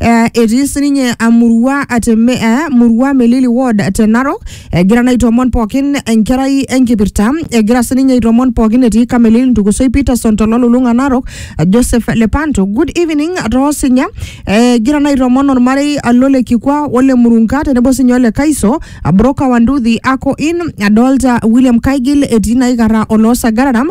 Eh, etii sininye amurua ateme eh, murua melili ward te narok egira naa aitoomon pookin enkerai enkipirta egira sininye aitoomon pookin etii kamelil ntukusoi peterson tololulung'a narok eh, joseph lepanto good evening toosinya Eh, egira naa aitoomon ormarei alo le kikwa ole murunga tenebo sinye ole kaiso abroka wanduthi ako in adolta william kaigil etii naikarra oloo sagararam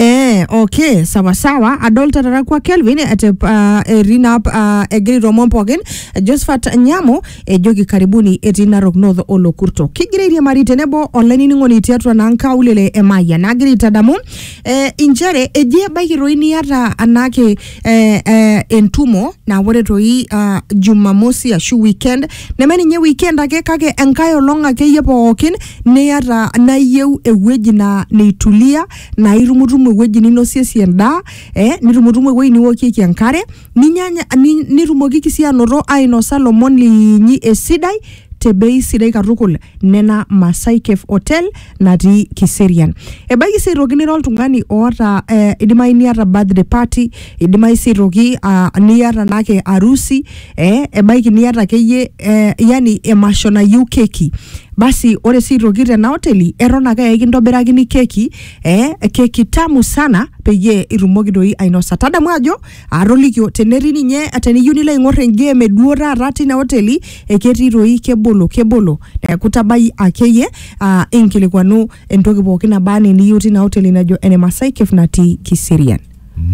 Eh, okay sawa sawa adolta tata kwa kelvin ete uh, erina uh, egira ilomon pookin josephat nyamo ejoki karibuni etii narok north olokurto kigira airiamari tenebo olainining'oni tiatua naa nkaulele emayian nagira aitadamu eh, inchere eji ebaiki toi niata anaake eh, eh, entumo naa ore toi uh, jumamosi ashu weekend neme ninye weekend ake kake enkae olong akeyie pookin niyata nayieu ewueji na neitulia naa itumutumu ewueji ninosiesie endaa eh, nitumutumu ewueji niwokieki enkare ninyanya ni- nitumokiki sii anoto ainosa lomon linyi esidai te bei sidai katukul nena masaa e Cave Hotel natii Kiserian. Ebaiki sii aitoki nira oltung'ani oota eh, idimayu niata birthday party, idimayu sii aitoki ah, niata naake arusi, eh, ebaiki niata akeyie eh, yani emasho nayieu keki. Basi ore sii aitoki tena oteli eton ake aa ekintobirakini keki, eh, keki tamu sana peyie itumoki doi ainosa. Tadamu ajo atolikio tenetii ninye teniyieu nilo aing'or engame eduo taata tina oteli eketii toi kebolo kebolo neeku tabai akeyie uh, inkilikuanu entoki pookin naba anaa eniyieu tina oteli najo ene Masai Cave natii Kiserian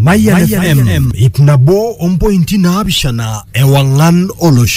Mayan FM, ip nabo ompointi naapishana ewang'an olosho.